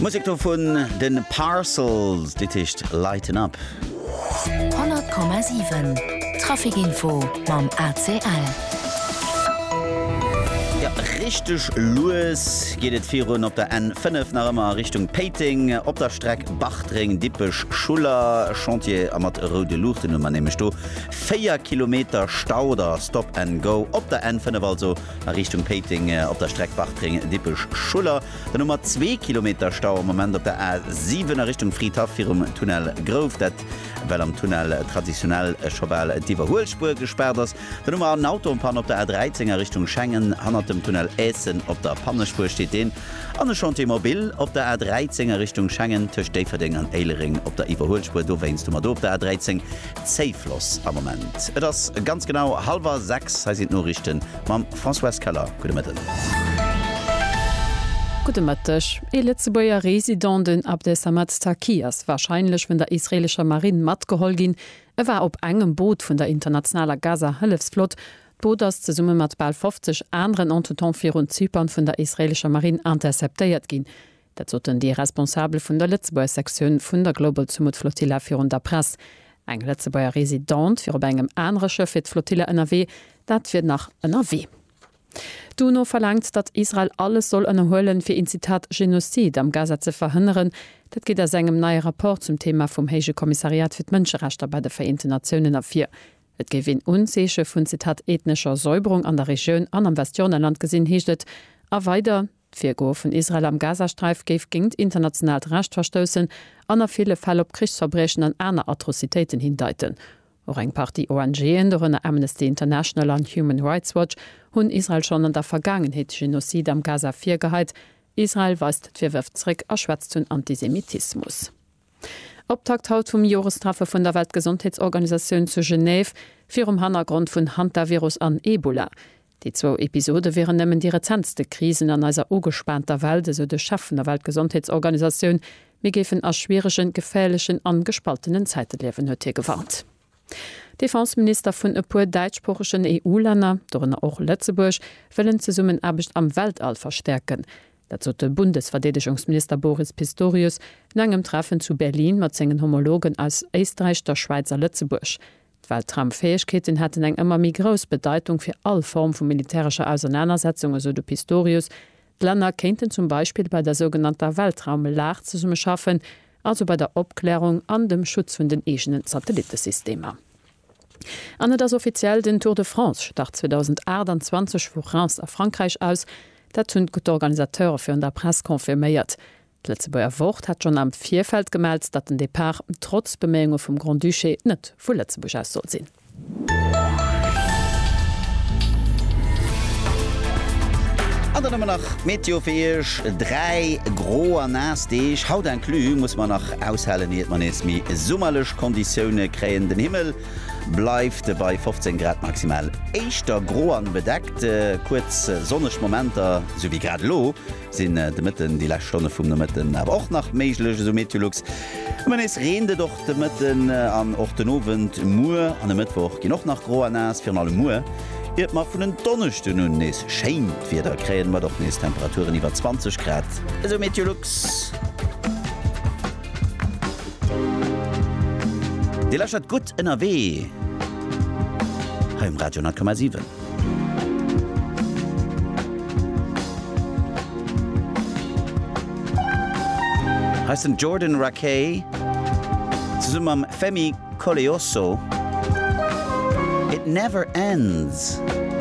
Musek do vun de Parcels, dit heescht Lighten Up. 100,7 Traficinfo mam ACL. Jo, richteg lues geet et virun op der N5 nach ëmmer a Richtung Péiteng. Op der Streck Bartreng, Dippech, Schuller, Chantier a mat roude Luuchten hu mer nämlech do 4 Kilometer Stau oder Stop-and-Go op der N5 also. A Richtung Péiteng op der Streck Bartreng, Dippech, Schuller, dann hu mer zwee Kilometer Stau am Moment op der A 7 a Richtung Fridhaff virum Tunnel Grouf, dat well am Tunnel traditionell scho bal d'Iwwerhuelspuer gespaart ass. Dann hu mer en Auto en Panne op der A 13 a Richtung Schengen, hannert dem Tunnel Eszen op der Pannespuer steet deen. An e Chantier mobile op der A 13 a Richtung Schengen, tëscht Déifferdeng an Éilereng op der Iwwerhuelspuer, dowéinst hu mer do op der A 13 Safe loss am Moment. Et ass ganz genau hallwer 6, hei sinn d'Noriichten mam Françoise Keller. Gudde Mëtten. Gudde Mëtteg. Ee Lëtzebuerger Resident, den Abdesamad Taqi, ass warscheinlech vun der israeelescher Marinn matgeholl ginn. E war op engem Boot vun der internationaler Gaza-Hëllefsflott. D'Boot ass zesumme mat bal 50 aneren Entretemps virun Zypern vun der israeelescher Marinn interceptéiert ginn. Dat soten déi Responsabel vun der Lëtzebuerger Sektioun vun der Global Sumud Flotilla virun der Press. Eng Lëtzebuerger Residente wier op engem anere Schëff fir d'Flotilla ënnerwee, dat wier nach ënnerwee. D'UNO verlaangt, datt Israel alles soll ënnerhuelen, fir een Zitat Genozid am Gaza ze verhënneren. Dat geet aus engem neie Rapport zum Theema vum Héije Kommissariat fir d'Mënscherechter bei de Vereenten Natiounen ervir. Et géif een Unzeeche vun Zitat ethnescher Säuberung an der Regioun an am Westjordanland gesinn, heescht et a weider. D'Virgoe vun Israel am Gazasträif géif géingt internationaalt Recht verstoussen an a ville Fäll op Krichsverbriechen an aner Atrocitéiten hindeiten. Och eng Partie ONGen, dorënner Amnesty International an Human Rights Watch, hunn Israel schonn an der Vergaangenheet Genocide am Gaza virgeheit. Israel weist d'Virwërf zeréck a schwätzt vun Antisemitismus. Optakt haut vum Jorestreffe vun der Weltgesondheetsorganisatioun zu Genève virum Hannergrond vun Hantavirus an Ebola. Déi zwou Episode wieren nëmmen déi rezentste Krisen an eiser ugespaanter Welt, esou de Chef vun der Weltgesondheetsorganisatioun. Mir géifen a schwieregen, geféierlechen an gespaltenen Zäite liewen, huet hie gewarnt. Defenseminister vun e puer däitschsproochegen EU-Länner, dorënner och Lëtzebuerg, wëllen d'Zesummenaarbecht am Weltall verstäerken. Dat sot de Bundesverdeedegungsminister Boris Pistorius no engem Treffen zu Berlin mat sengen Homologen aus Éisträich, der Schwäiz a Lëtzebuerg. D'Weltraumfäegkeeten hätten eng ëmmer méi grouss Bedeitung fir all Form vu militärescher Ausernanersetzung, esou de Pistorius. D'Länner kéinten zum Beispill bei der sougenannter Weltraumlag zesumme schaffen, also bei der Opklärung an dem Schutz vun den eegenen Satelittesystemer. An et ass offiziell, Den Tour de France start 2028 vu Reims a Frankräich aus. Dat hunn d'Organisateure virun der Press confirméiert. D'Lëtzebuerger Wort hat schonn am Virfeld gemellt, datt den Depart trotz Beméiunge vum Grand-Duché net vu Lëtzebuerg aus soll sinn. An dann hu mer nach d'Meteo fir Iech, dräi gro a naass Deeg, haut inclus, musse mer nach aushalen, iert mer nees méi summerlech Konditioune kréien. Den Himmel bleift bei 15 Grad maximal. Éischter gro an bedeckt, kuerz sonneg Momenter, sou wéi grad elo, sinn de Mëtten, déi lescht Stonne vum Nomëtten awer och nach méiglech, esou Meteolux. Ëmmer nees reent et och de Mëtten an och den Owend. Muer an e Mëttwoch ginn och nach gro a naass, virun allem muer, iert mer vun en Donneschden un nees schéint Wieder kréien, mat och nees Temperaturen iwwer 20 Grad, esou Meteolux. Dir lauschtert Gutt ënnerwee hei um Radio 10,7. Hei ass den Jordan Rakei zesumme mam Femi Koleosso, It Never Ends.